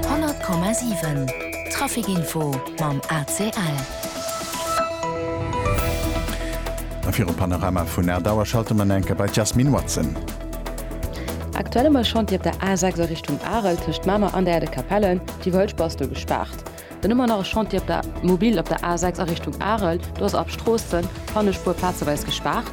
100,7 Trafic Info mam ACL. A fir e Panorama vun Aer Dauer schalte mer enke bei d'Jasmine Watson. Aktuell um e Chantier op der A6 a Richtung Arel tëscht Mamer an der Aire de Capellen, déi vu Hëlschbass do gespaart. Dann hu mer nach e Chantier op der Mobil op der A6 a Richtung Arel, do ass ab Stroossen, Pannespuer plazeweis gespaart.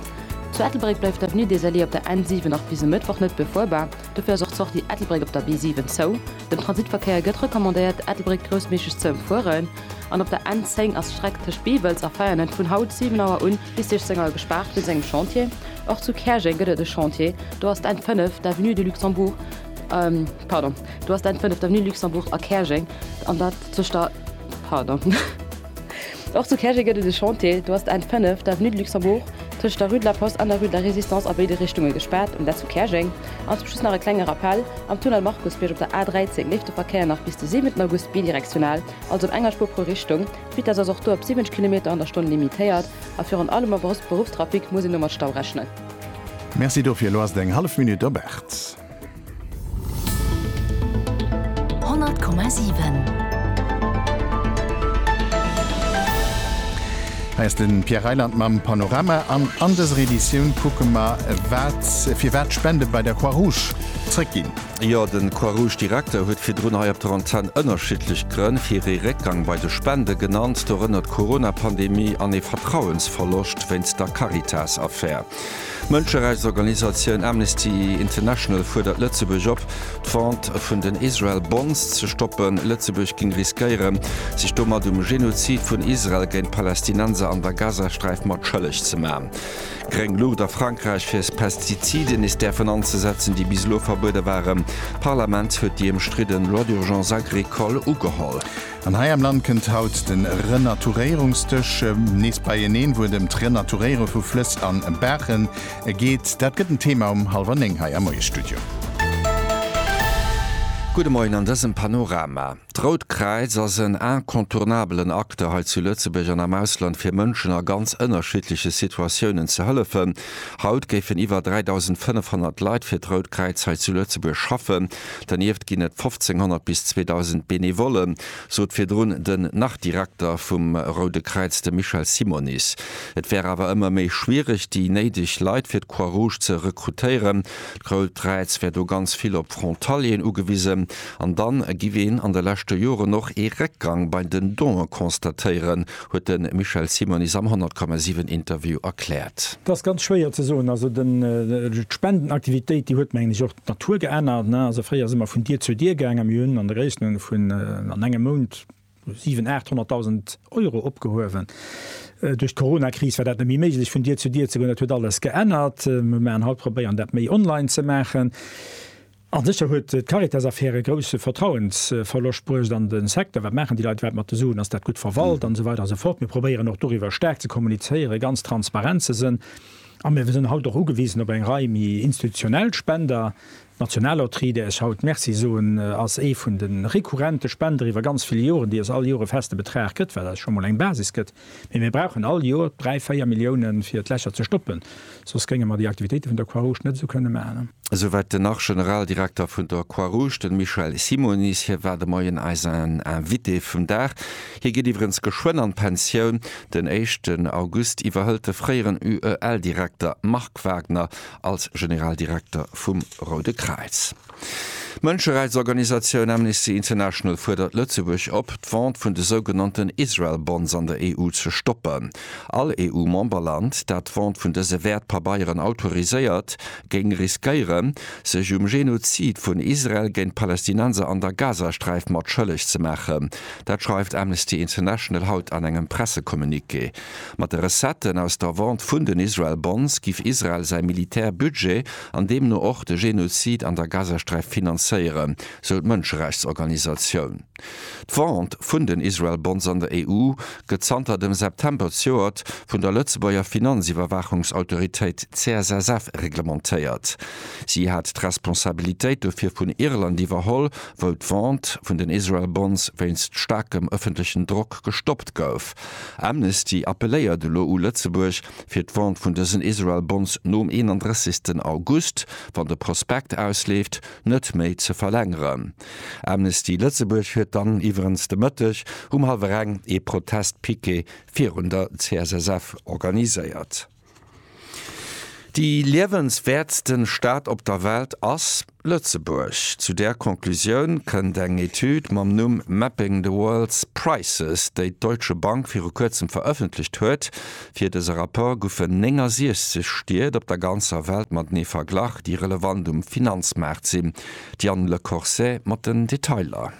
Zu Ettelbréck bleift d'Avenue des Alliés op der N7 nach bis e Mëttwoch net befuerbar. Dofir ass och d'Sortie Ettelbréck op der B7 zou. Dem Transitverkéier gëtt recommandéiert, Ettelbréck groussméiglech ze ëmfueren. An op der N10 ass d'Streck tëscht Beewels a Veianen vun haut 7 Auer un bis 16 Auer gespaart wéinst engem Chantier. Och zu Käerjeng gëtt et e Chantier. Do ass d'N5, d'Avenue de Luxembourg, pardon, do ass d'N5, d'Avenue de Luxembourg a Käerjeng, an dat tëscht der, pardon. Och zu Käerjeng gëtt et e Chantier. Do ass d'N 5, d'Avenue de Luxembourg, tëscht der Rue de la Poste an der Rue de la Résistance a béide Richtunge gespaart, um dat zu Käerjeng. An zum Schluss nach e klenge Rappell, Am Tunnel Markusbierg op der A 13 leeft de Verkéier nach bis de 7 August bidirektional, also op enger Spuer pro Richtung. D'Vitess ass och do op 70 Kilometer an der Stonn limitéiert a virun allem am Beruffstrafic muss een do mat Stau rechnen. Merci dofir. Elo ass et eng hallef Minutt op 8. 100,7. Hei ass den Pierre Reyland mam Panorama an an dëser Editioun kucke mer wat firwat d'Spende bei der Croix Rouge zréck ginn. Jo, den Croix Rouge Direkter huet virdrun hei op der Antenn ënnerschiddlech Grënn fir ee Réckgang bei de Spende genannt, dorënner d'Corona-Pandemie an ee Vertrauensverloscht wéinst der Caritas-Affär. D'Mënscherechtsorganisatioun Amnesty International fuerdert Lëtzebuerg op, d'Vente vun den Israel Bonds ze stoppen. Lëtzebuerg géing riskéieren, sech domat um Genozid vun Israel géint d'Palästinenser an der Gazasträif mat schëlleg ze maachen. Gréng Luucht a Frankräich fir Pestiziden nees däerfen anzesetzen, déi bis elo verbuede waren. D'Parlament huet déi ëmstridden Loi d'urgence agricole ugeholl. An hei am Land kënnt haut de Renaturéierungsdësch nees beieneen, wou et ëm d'Renaturéiere vu Flëss a Baache geet. Dat gëtt den Thema um hallwer néng hei am Moiesstudio. Gudde Moien an dësem Panorama. D'Rout Kräiz ass en incontournabelen Acteur hei zu Lëtzebuerg an am Ausland fir Mënschen a ganz ënnerschiddleche Situatiounen ze hëllefen. Haut géifen iwwer 3.500 Leit fir d'Rout Kräiz hei zu Lëtzebuerg schaffen. Dernieft ginn et 1500 bis 2000 Benevolle, sot virdrun den Nach-Direkter vum Roude Kräiz, de Michel Simonis. Et wär awer ëmmer méi schwiereg, déi néideg Leit fir d'Croix-Rouge ze rekrutéieren. D'Rout Kräiz wär do ganz vill op Frontalieren ugewisen. An da giff een an de leschte Joren och ee Réckgang bei den Donë constatéieren, huet de Michel Simonis am 100,7 Interview erkläert. Et ass ganz schwéier ze soen. Also d'Spendenaktivitéit, déi huet mengen ech och D'Natur geännert, ne? Also fréier si mer vun Dier zu Dier gaangen, mir hunn an der Gréisstenunge vun an engem Mount 7, 800.000 Euro opgehuewen. Duerch d'Coronakris war dat net méi méiglech vun Dier zu Dier ze goen, dat huet alles geännert. Mir maachen haut, probéieren dat méi online ze maachen. A sécher huet d'Caritas-Affär e grousse Vertrauensverloscht bruecht an de Secteur, wat maachen déi Leit iwwerhaapt mat de Suen, ass dat gutt verwalt an esou weider an esou fort. Mir probéieren och doriwwer staark ze kommunizéieren, ganz transparent ze sënn. A mir sinn haut och ugewisen op eng Rei méi institutionell Spender. D'Nationalloterie, där ech haut Merci soen, ass ee vun de rekurrente Spender iwwer ganz vill Joren, déi eis all Joer e feste Betrag gëtt, wat eis scho mol eng Basis gëtt. Mee mir brauchen all Joer dräi, véier Milliounen, fir d'Lächer ze stoppen. Soss géinge mer déi Aktivitéite vun der Croix-Rouge net esou kënne maachen. Esouwäit den Nach-Generaldirekter vun der Croix-Rouge, den Michel Simonis. Hie war de Moien eisen Invité vum Dag. Hie geet iwwerens geschwënn an d'Pensioun. Den éischten August iwwerhëlt de fréieren UEL-Direkter Marc Wagner als Generaldirekter vum Roude Kräiz. D'Mënscherechtsorganisatioun Amnesty International fuerdert Lëtzebuerg op, d'Vente vun de sougenannten Israel Bonds an der EU ze stoppen. All EU-Memberland, dat d'Vente vun dëse Wäertpabeieren autoriséiert, géing riskéieren, sech um Genozid vun Israel géint d'Palästinenser an der Gazasträif mat schëlleg ze maachen, Dat schreift Amnesty International haut an engem Pressecommuniqué. Mat de Recetten aus der Vente vun den Israel Bonds giff Israel säi Militärbudget an deemno och de Genozid an der Gazasträif finanzéieren, sou d'Mënscherechtsorganisatioun. D'Vente vun den Israel Bonds an der EU gëtt zanter dem September zejoert vun der Lëtzebuerger Finanziwwerwaachungsautoritéit CSSF reglementéiert. Si hat d'Responsabilitéit dofir vun Irland iwwerholl. wou d'Vente vun den Israel Bonds wéinst staarkem ëffentlechen Drock gestoppt gouf. Amnesty appelléiert elo u Lëtzebuerg, fir d'Vente vun dësen Israel Bonds nom 31 August, wann de Prospekt ausleeft, net méi ze verlängeren. Amnesty Lëtzebuerg huet dann iwwerens de Mëtteg um hallwer eng ee Protestpiquet virun der CSSF organiséiert. Déi liewenswäertsten Stad op der Welt ass Lëtzebuerg. Zu där Conclusioun kënnt eng Etüd mam Numm Mapping the World's Prices, déi d'Deutsche Bank viru kuerzem verëffentlecht huet. Fir dëse Rapport goufen 69 Stied op der ganzer Welt matenee verglach, déi relevant um Finanzmaart sinn. D'Diane Le Corset mat den Detailer.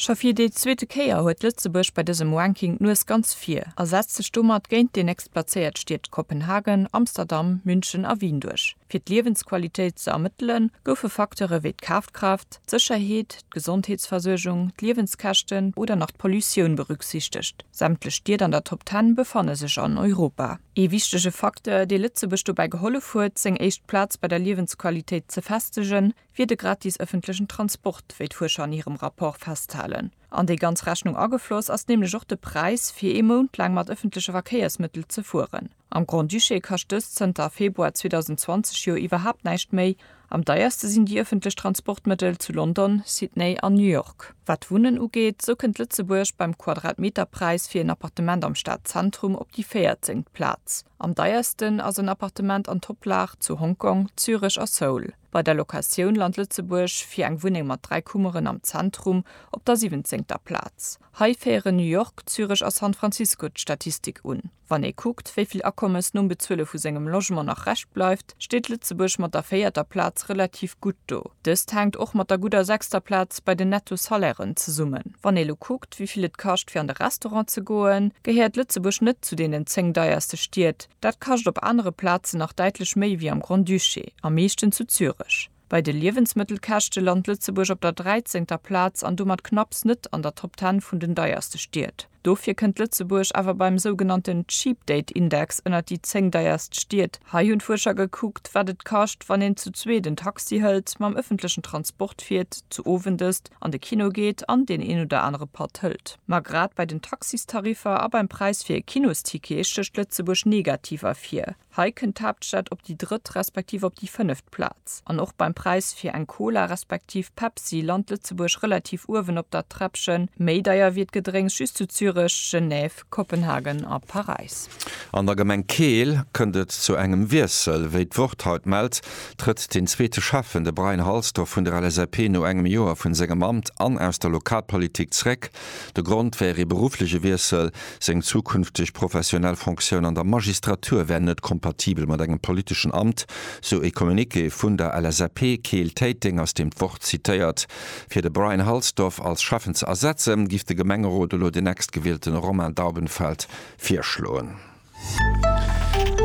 Scho fir déi zweete Kéier huet Lëtzebuerg bei dësem Ranking d'Nues ganz vir a setzt sech domat géint déi nächst plazéiert Stied Kopenhagen, Amsterdam, München a Wien duerch. Fir d'Liewensqualitéit ze ermëttelen, goufe Facteure wéi d'Kafkraaft, d'Sécherheet, d'Gesondheetsversuergung, d'Liewenskäschten oder nach d'Pollutioun berücksichtegt. Sämtlech Stied an der Top Ten befanne sech an Europa. Ee wichtege Facteur, dee Lëtzebuerg dobäi gehollef huet, seng éischt Plaz bei der Liewensqualitéit ze festegen, wier de gratis ëffentlechen Transport, wéi d'Fuerscher an hirem Rapport festhalen. An déi ganz Rechnung agefloss ass nämlech och de Präis, fir ee Mount laang mat ëffentleche Verkéiersmëttel ze fueren. Am Grand-Duché kascht dëst zënter Februar 2020 jo iwwerhaapt näischt méi. Am deierste sinn déi ëffentlech Transportmëttel zu London, Sydney an New York. Wat d'Wunnen ugeet, sou kënnt Lëtzebuerg beim Quadratmeterpräis fir en Appartement am Stadzentrum op déi véierzengt Plaz. Am deiersten ass en Appartement an Toplag zu Hongkong, Zürech a Seoul. Bei der Locatioun lant Lëtzebuerg fir eng Wunneng mat dräi Kummeren am Zentrum op der siwwenzéngter Plaz. Hei féieren New York, Zürech a San Francisco d'Statistik un. Wann ee kuckt, wéi vill Akommes nom Bezuele vu sengem Logement nach Rescht bleift, steet Lëtzebuerg mat der véierter Plaz relativ gutt do. Dëst hänkt och mat der gudder sechster Plaz bei den Netto-Salairen zesummen. Wann ee lo kuckt, wéi vill et kascht fir an de Restaurant ze goen, gehéiert Lëtzebuerg net zu deenen zéng deierste Stied, Dat kascht op anere Plazen nach däitlech méi wéi am Grand-Duché, am meeschten zu Zürech. Bei de Liewensmëttelkäschte lant Lëtzebuerg op der dräizéngter Plaz an domat knapps net an der Top Ten vun den deierste Stied. Dofir kënnt Lëtzebuerg awer beim sougenannten Cheap Date Index ënnert déi zéng deierst Stied. Hei hunn d'Fuerscher gekuckt, wat et kascht, wann een zu zweet en Taxi hëlt, mam ëffentlechen Transport fiert, zu Owendësst, an de Kino geet an deen een oder anere Patt hëlt. Ma grad bei den Taxistariffer a beim Präis fir e Kinosticket stécht Lëtzebuerg negativ ervir. Hei kënnt d'Haaptstad op déi drëtt respektiv op déi fënneft Plaz. An och beim Präis fir eng Cola respektiv Pepsi lant Lëtzebuerg relativ uewen op der Treppchen. Méi deier wier d'Gedrénks just zu Zürech, Genève, Kopenhagen a Paräis. An der Gemeng Keel kënnt et zu engem Wiessel. Wéi d'Wort haut mellt, trëtt den zweete Schäffen, de Brian Halsdorf vun der LSAP, no engem Joer vun sengem Amt an aus der Lokalpolitik zréck. De Grond wär ee beruffleche Wiessel. Seng zukünfteg professionell Fonctioun an der Magistratur wär net kompatibel mat engem politeschen Amt, sou ee Communiqué vun der LSAP Keel-Téiteng, aus deem d'Wort zitéiert. Fir de Brian Halsdorf als Schäffen ze ersetzen, giff de Gemengerot elo den Next-Gewielten Romain Daubenfeld virschloen.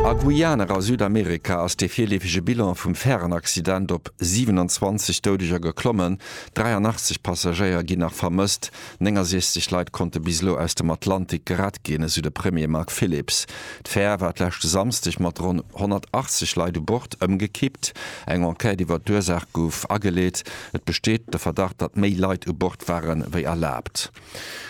A Guyane a Südamerika ass dee virleefege Bilan vum Färenaccident op 27 Doudeger geklommen. 83 Passagéier ginn nach vermësst. 69 Leit konnte bis elo aus dem Atlantik gerett ginn, esou de Premier Mark Phillips. D'Fär war d'leschte Samsdeg mat ronn 180 Leit u Bord ëmgekippt. Eng Enquête iwwer d'Ursaach gouf ageleet. Et besteet de Verdacht, datt méi Leit u Bord ware wéi erlaabt.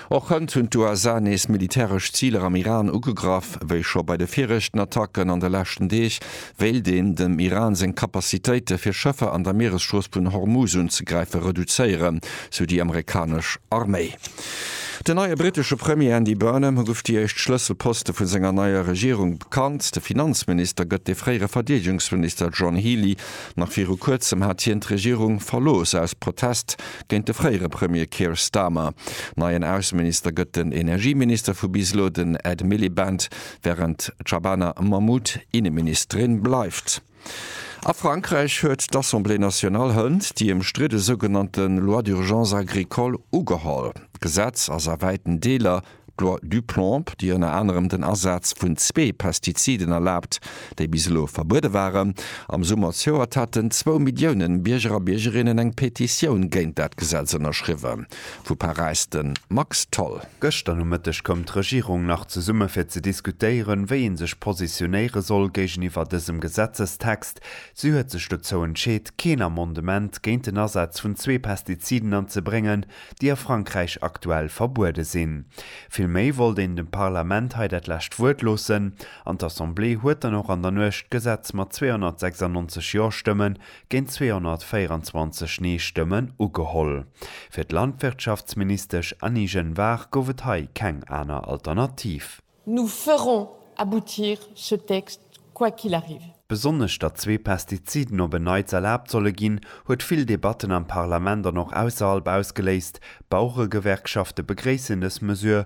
Och hënt hunn d'USA nees militäresch Ziler am Iran ugegraff, wéi scho bei de viregten Attacken an de leschten Deeg. wéilt een dem Iran seng Capacitéite fir Schëffer an der Mieresstrooss vun Hormuz unzegräife reduzéieren, sou déi amerikanesch Arméi. Den neie brittesche Premier Andy Burnham guff déi éischt Schlësselposte vu senger neier Regierung bekannt. De Finanzminister gëtt de fréiere Verdeedegungsminister John Healey. Nach viru kuerzem hat hien d'Regierung verlooss aus Protest géint de fréiere Premier Keir Starmer. Neien Ausseminister gëtt den Energieminister vu bis elo, den Ed Miliband. wärend d'Shabana Mahmoud Inneministerin bleift. A Frankräich huet d'Assemblée nationale hënt déi ëmstridde sougenannte Loi d'urgence agricole ugeholl. D'Gesetz ass a wäiten Deeler d'Loi Duplomb, déi ënner anerem den Asaz vun zwee Pestiziden erlaabt, déi bis elo verbuede waren. Am Summer zouert haten zwou Millioune Bierger a Biergerinnen eng Petitioun géint dat Gesetz ënnerschriwwen. Vu Paräis de Max Tholl. Gëschter Nomëtteg koum d'Regierung nach zesumme fir ze diskutéieren, wéi ee sech positionéiere soll géigeniwwer dësem Gesetzestext. Si huet sech dozou entscheet, keen Amendement géint den Asaz vun zwee Pestiziden anzebréngen, déi a Frankräich aktuell verbuede sinn. Villméi wollt een dem Parlament hei dat lescht Wuert loossen an d'Assemblée huet dann och an der Nuecht d'Gesetz mat 296 Jo-Stëmme géint 224 Nee-Stëmmen ugeholl. Fir d'Landwirtschaftsministesch Annie Genevard gouf et hei keng aner Alternativ. Nous ferons aboutir ce texte quoi qu'il arrive. Besonnesch datt zwee Pestiziden op en Neits erlaabt solle ginn, huet vill Debatten am Parlament an och ausserhalb ausgeléist. D'Baueregewerkschafte begréissen dës Mesure,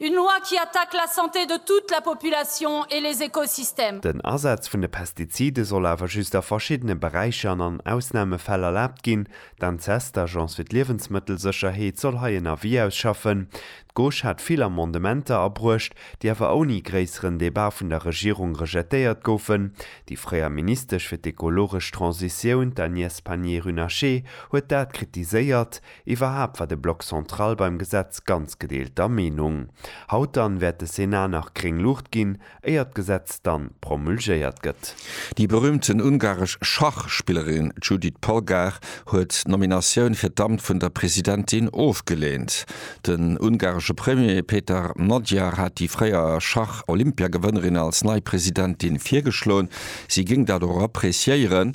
Une loi qui attaque la santé de toute la population et les écosystèmes. Den Asaz vun de Pestizide soll awer just a verschiddene Beräicher an an Ausnamefäll erlaabt ginn. D'ANSES, d'Agence fir d'Liewensmëttelsécherheet, soll hei en Avis ausschaffen. D'Gauche hat vill Amendementer abruecht, déi awer ouni gréisseren Debat vun der Regierung rejetéiert goufen. Déi fréier Ministesch fir d'ekologesch Transitioun, d'Agnès Pannier-Runacher, huet dat kritiséiert. Iwwerhaapt war de Bloc central beim Gesetz ganz gedeelter Meenung. Haut dann wäert de Senat nach gréng Luucht ginn, éier d'Gesetz dann promulgéiert gëtt. Déi berühmten ungaresch Schachspillerin Judit Polgár huet d'Nominatioun fir d'Amt vun der Presidentin ofgeleent. Den ungaresche Premier Péter Magyar hat déi fréier Schach-Olympiagewënnerin als nei Presidentin virgeschloen. Si géing dat och appreciéieren.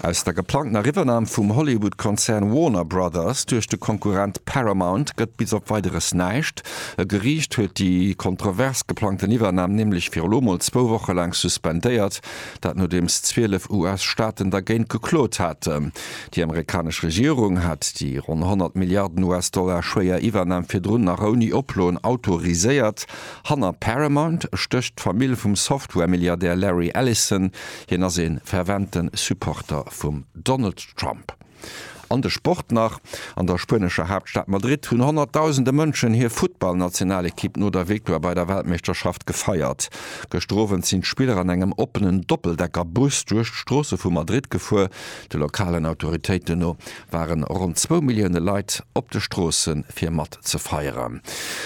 Aus der geplangtener Riwwernam vum Hollywood-Konzern Warner Brothers duerch de Konkurrent Paramount gëtt bis op Weideres näischt. E Geriicht huet déi kontrovers geplangten Iwwernam nämlech fir elo mol zwou Woche laang suspendéiert. Dat nodeems 12 US-Staaten dergéint geklot haten. Déi amerikanesch Regierung hat déi ronn 100 Milliarden US-Dollar schwéier Iwwernam virdrun nach ouni Oploen autoriséiert. Hanner Paramount stécht d'Famill vum Software-Milliardär Larry Ellison, Hien ass ee fervente Supporter vum Donald Trump. An de Sport nach, An der spuenescher Haaptstad Madrid hunn honnertdausende Mënschen hir Futtballnationalekipp no der Victoire bei der Weltmeeschterschaft gefeiert. Gëschter Owend sinn d'Spiller an engem oppenen Doppeldecker-Bus duerch d'Stroosse vu Madrid gefuer. De lokalen Autoritéiten no waren ronn zwou Millioune Leit op de Stroosse fir mat ze feieren.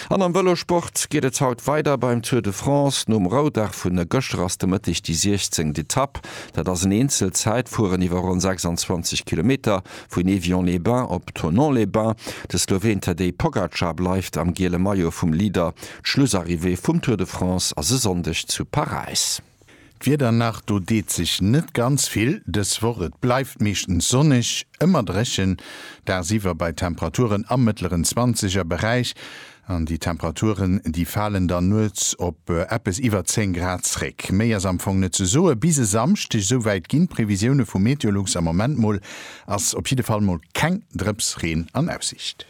An am Vëlosport geet et haut weider beim Tour de France. Nom Roudag vu gëschter ass de Mëtteg déi 16. Etapp. Dat ass en Eenzel-Zäitfueren iwwer ronn 26 Kilometer vun Evian-les-Bains op Thonon-les-Bains. De Sloween Tadej Pogacar bleift am giele Maillot vum Leader. D'Schlussarrivée vum Tour de France ass e Sonndeg zu Paräis. D'Wieder nach, do deet sech net ganz vill dës Woch. Et bleift meeschtens sonneg, ëmmer dréchen, dagsiwwer bei Temperaturen am mëttleren zwanzeger Beräich. An déi Temperaturen, déi falen dann nuets op eppes iwwer 10 Grad zréck. Méi ass am Fong net ze soe bis e Samschdeg, souwäit ginn d'Previsioune vu Meteolux am Moment mol. Ass op jidde Fall mol keng Drëpsreen an Aussicht.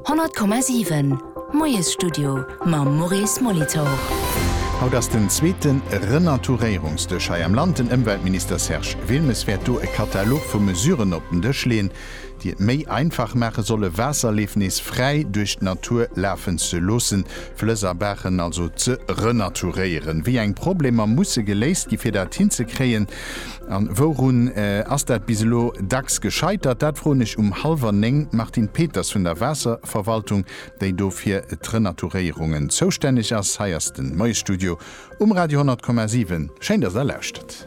100,7 Moiesstudio mam Maurice Molitor. Haut ass den zweete Renaturéierungsdësch hei am Land. Den Ëmweltminister Serge Wilmes wäert do e Katalog vu Mesuren op den Dësch leeën, déi et méi einfach maache solle Waasserleef nees fräi duerch d'Natur lafen ze loossen, Flëss a Baachen also ze renaturéieren. Wéi eng Problemer musse geléist gi fir dat hinzekréien? A wourun ass dat bis elo dacks gescheitert? Dat froen ech um hallwer néng d'Martine Peters vun der Waasserverwaltung, déi do fir d'Renaturéierungen zoustänneg ass. Hei ass de Moiesstudio um Radio 100,7. Schéin, dass Der lauschtert.